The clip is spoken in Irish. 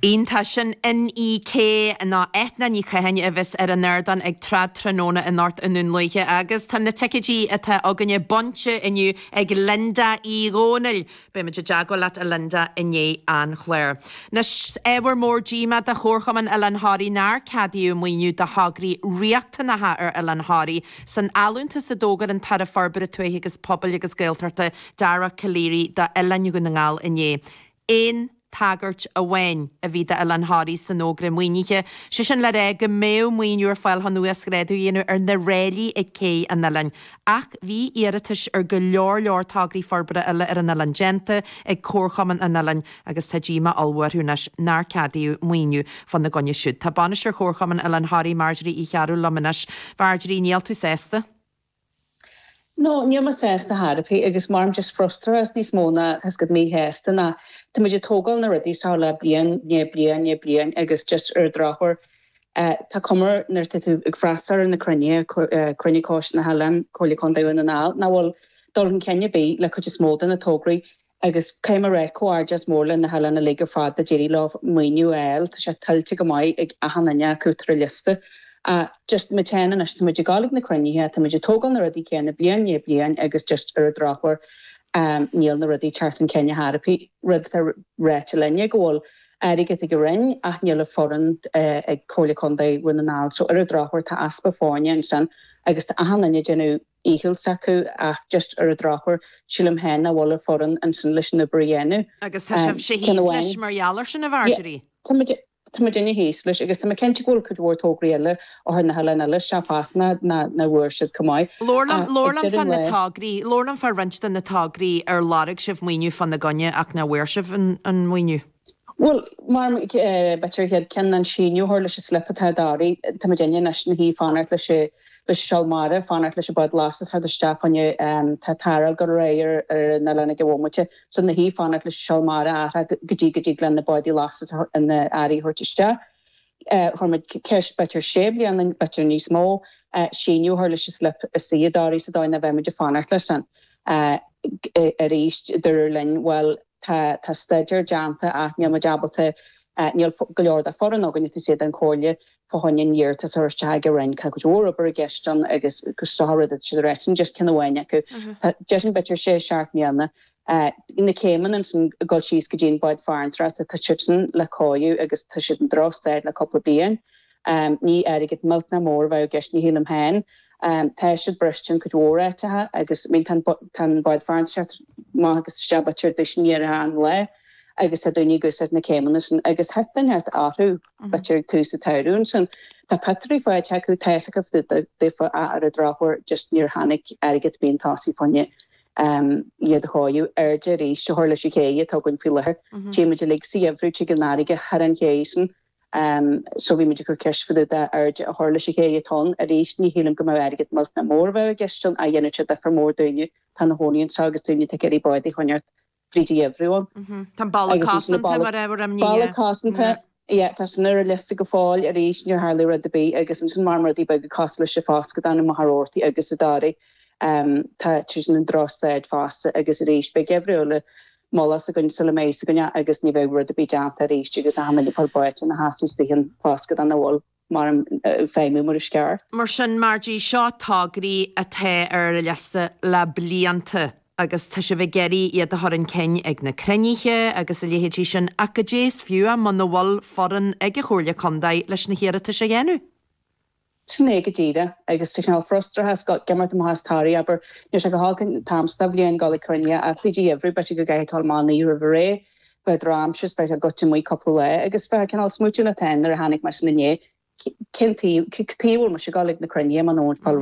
Iontach, sin Inni-K ná Eithne Ní Chatháin a bheas ar an ardán ag Trad Tráthnóna anocht i nDún Lúiche agus tá na ticéidí atá againne bainte inniu ag Linda Uí Dhomhnaill. Beimid i dteagmháil leat a Linda i ndiaidh an chláir. Anois ábhar mór díomá do Chomharchumann Oileán Thoraí nár ceadaíodh maoiniú do thograí riachtanacha ar Oileán Thoraí san allúntas a d'fhógair an tAire Forbartha Tuaithe agus Pobail agus Gaeltachta Dara Calleary d'Oileáin Dhún na nGall inné. Aon tagairt amháin a bhí d'Oileán Thoraí san fhógra maoinithe, sé sin le rá go mbeadh maoiniú ar fáil chun uasghrádu a dhéanamh ar na ráillí ag cé an oileáin. Ach bhí iarratais ar go leor leor tograí forbartha eile ar an oileán déanta ag Comharchumann an oileáin agus tá díomá ollmhór orthu anois nár ceadaíodh maoiniú fá na gcoinne siúd. Tá Bainisteoir Chomharchumann Oileán Thoraí, Marjorie Uí Chearbhaill liom anois. Marjorie, níl tú sásta? No, níl mé sásta ar chor ar bith agus maram just frustrachas níos mó ná tá's agat míshásta ná. Tá muid ag tógáil na rudaí seo le bliain i ndiaidh bliain i ndiaidh bliain agus just ar an drochuair tá cuma air nuair atá tú ag freastal ar na cruinnithe, cruinniú Coiste na hOileáin, Comhairle Contae Dhún na nGall, nach bhfuil dul chun cinn ar bith le cuid is mó de na tograí. Agus caithfidh mé a ráit comhghairdeas mór le na hoileáin uilig ar fad a d'éirigh leo maoiniú a fháil, tá sé tuillte go maith ag achan duine acu atá ar an liosta. Ach just muid féin anois, tá muid ag dul ag na cruinnithe, tá muid ag tógáil na rudaí céanna bliain i ndiaidh bliain agus just ar an drochuair níl na rudaí ag teacht chun cinn ar chor ar bith. Rud atá ráite linn ná go bhfuil airgead ag an Roinn ach níl an foireann ag Comhairle Contae Dhún na nGall so ar an drochuair tá easpa foirne ansin agus tá achan duine ag déanamh dícheall s'acu ach just ar an drochuair sílim féin nach bhfuil an foireann ansin leis an obair a dhéanamh. Agus tá sibhse thíos leis mar gheall ar sin, a Mharjorie? Yeah, tá muidinne thíos leis agus tá mé cinnte go bhfuil cuid mhór tograí eile ó thar na hoileáin eile seo fosta nár bhfuair siad chomh maith. Labhair liom, labhair liom fá na tograí, labhair liom fá roinnt de na tograí ar lorg sibh maoiniú fá na gcoinne ach nár bhfuair sibh an maoiniú. Bhuel, mar b'fhéidir an chéad ceann ná síneadh a chur leis an slip atá i dToraigh. Tá muidinne anois ina shuí fanacht leis an seol mara, fanacht leis an bád lastais teacht isteach chugainn, tá tarraingt go réidh ar na Leanaigh ag an bhomaite, so ina shuí fanacht leis an seol mara ardú go dtí go dtig leis an bád lastais earraí a thabhairt isteach. Chuir muid ceist, b'fhéidir sé bliana anois, b'fhéidir níos mó, síneadh a chur leis an slip seo i dToraigh sa dóigh nach mbeadh muid ag fanacht leis sin. Arís dúradh linn, Bhuel, tá tá staidéar déanta ach níl muid ábalta níl go leor de foireann againn taobh istigh den Chomhairle fá choinne an iarratas a chur isteach ag an Roinn tá cuid mhór obair i gceist ann agus seo an rud atá siad a ráit linn just ceann amháin acu tá sé sin b'fhéidir sé seacht mbliana na céimeanna ansin ag dul síos go dtí an bád farantóireachta tá siadsan le cóiriú agus tá siad i ndrochstaid le cúpla bliain Ní airgead millteanach mór a bheadh i gceist, ní shílim féin. Tá siad briste in cuid mhór áiteacha agus tá an bád farantóireachta amach agus isteach b'fhéidir ar dtúis i ndeireadh an lae agus tá daoine ag úsáid na céimeanna san agus thit an neart orthu b'fhéidir ag tús an tsamhraidh. Ansin tá potaí fáite acu, tá's acu daofa ach ar an drochuair just níor tháinig airgead ar bith chun tosaigh fá choinne iad a thóigeadh airde arís a chur leis an chéidh atá againn faoi láthair. Tchímid uilig sa gheimhreadh tig an fharraige thar an chéidh san seo bhí muid ag cur ceist fá dtaobh de airde a chur leis an chéidh atá ann. Arís, ní shílim go mbeadh airgead millteanach mór a bheadh i gceist ann, ach dhéanfadh sé difear mór do dhuine atá ina chónaí anseo agus duine atá ag iarraidh bád a choinneáilt fríd an gheimhreadh ann. Tá an balla Agus ansin an cosanta balla, mar ábhar imní, balla yeah. cosanta, Yeah. yeah, tá sin ar an liosta go fóill, arís níor tharlaigh rud ar bith agus ansin mar, rudaí beaga cosúil leis an foscadán i Machaire Rabhartaigh agus i dToraigh, em, tá sin i ndrochstaid fosta agus arís beidh geimhreadh eile Moladh as againn, sula mbeidh a fhios againn, agus ní bheidh rud ar bith déanta arís, agus achan nduine fliuch báite ina sheasamh istigh in foscadán nach bhfuil, mar, ag feidhmiú mar is ceart. Mar sin, mar dtí seo, tograí atá ar an liosta le blianta, agus tá sibh ag iarraidh iad a chur chun cinn ag na cruinnithe agus a leithéidí sin, ach goidé is fiú muna bhfuil foireann ag an Chomhairle Contae leis na hiarratais a dhéanamh. Sin é go díreach. Agus tá cineál frustrachas ag imeacht amach as Toraigh, abair. Níl sé go holc an t-am seo de bhliain dul ag cruinniú ach faoi gheimhreadh b'fhéidir go gcaithfidh tú a ghabháil amach an oíche roimh ré, b'fhéidir drochaimsir is beidh tú goite amuigh cúpla lá agus bheith cineál ag smaoitiú an t-am nuair a tháinig mé san inné, cén taobh, taobh, an bhfuil mise ag dul ag na cruinnithe, muna bhfuil aon.